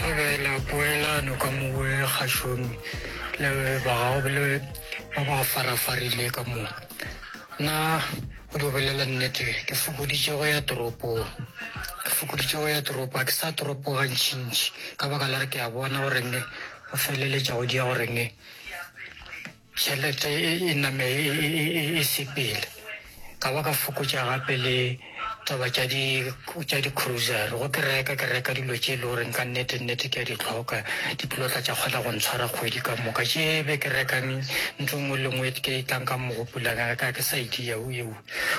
Thabela poelano ka mo o e gašomi le ba gago le ba ba farafarile ka mo. Nna go di bolela nnete ke fokoditše go ya toropong. Ke fokoditše go ya toropo, ga ke sa toropo gantšintši ka baka la gore ke a bona goreng go feleletša go diya goreng Tšhelete e, e name e, e, e, e, e sepele. Ka ba ka fokotša gape le taba tša di, tša di-cruiser. Go ke reka, ke reka dilo tše e le goreng ka nnete nnete ke a di tlhoka, di tlo tla tša kgona go ntshwara kgwedi ka moka. Tše be ke rekang ntho nngwe le nngwe ke e tlang ka mogopolong ya ka, ga ke sa e dia. O ewa,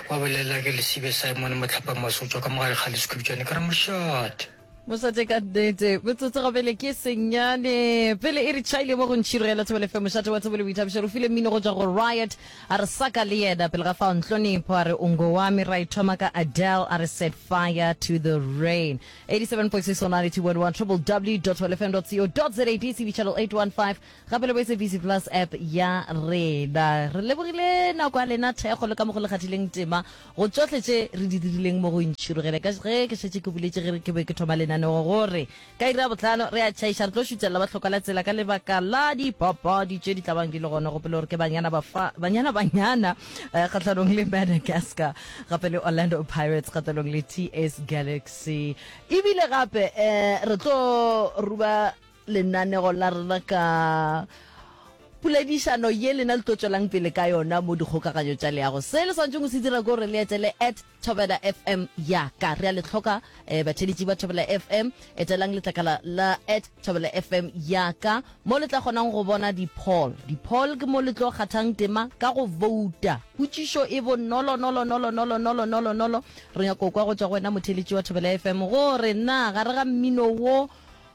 wa bolelela ke lesibe Simon Mohlapamosotšwa ka mogare ga lesukubjane, ke re, Mošate! Mošate ka nnete, metsotso ga pele ke senyane pele e re chaile mo go ntšhiro ya lethobele fe mošate wa thobole boithabišo re file mmino go tswa go riot a re saka le yena pele ga fao ntlonepho a re ungo wa me ra e thoma ka adele a re set fire to the rain 87.6 go 92.1 triple w wfm co za dcb channel 815 gape le bo sabc plus app ya rena re lebogile nako ya lena thekgo le ka mo go le kgathileng tema Go tšohle tše re di dirileng mo go ntšhirogele ka ge ke šetše ke boletše ge ke be ke thoma lenaneo gore ka iri ya bohlano re a tšhaiša re tlo šutšelela ba hloka la tsela ka lebaka la dipapadi tše di tla bang di le gona. Gopola gore ke Banyana Bafa, Banyana Banyana eh, kgahlanong le Madagascar gape le Orlando Pirates kgahlanong le TS Galaxy. Ebile gape eh, re tlo ruba lenaneo la rena ka poledišano ye lena le tlo tswelang pele ka yona mo dikgokaganyo tša leago se le swantšeng o se dira ko re le etele at thobela fm ya ka re a le tlhoka um eh, batheletši ba thobela fm etelang letlakala la at thobela fm ya ka mo le tla kgonang go bona di-poll di-poll ke mo le tlo kgathang tema ka go vouta potšišo e bonolonolonolonolonolonolonolonolo re nyako kwa go tswa go wena motheletši wa thobela fm gore na gare ga mmino wo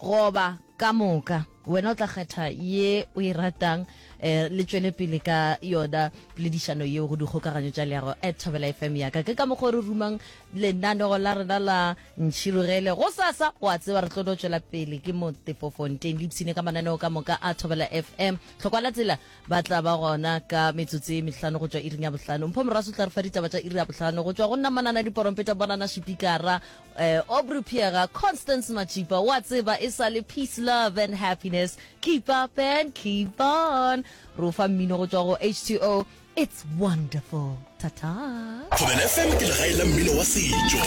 Goba, ka moka. Wena o tla kgetha ye o e ratang. Eh, le tšwele pele ka yona poledišano yeo go dikgokaganyo tša leago at thobela fm yaka ke ka mokgwa re rumang lenanego la rena la ntšhirogele go sasa wa tseba re tlo no tšwela pele ke motefofonteng le ipshine ka mananeo ka moka a thobela fm tlhokwa la tsela ba tla ba gona ka metsotso e mehlano go tšwa iring ya bohlano mpho moraso tla re fa ditaba tša iri ya bohlano go tšwa go nna manana diporompeta bonana šipikara Eh, Aubrey Pheega, Constance Matšipa, wa tseba e sa le Peace, Love and Happiness, Keep Up and Keep On. Ro fa mmino go tšwa go H2O, It's Wonderful. Ta-ta. Thobela FM ke legae la mmino wa setšo.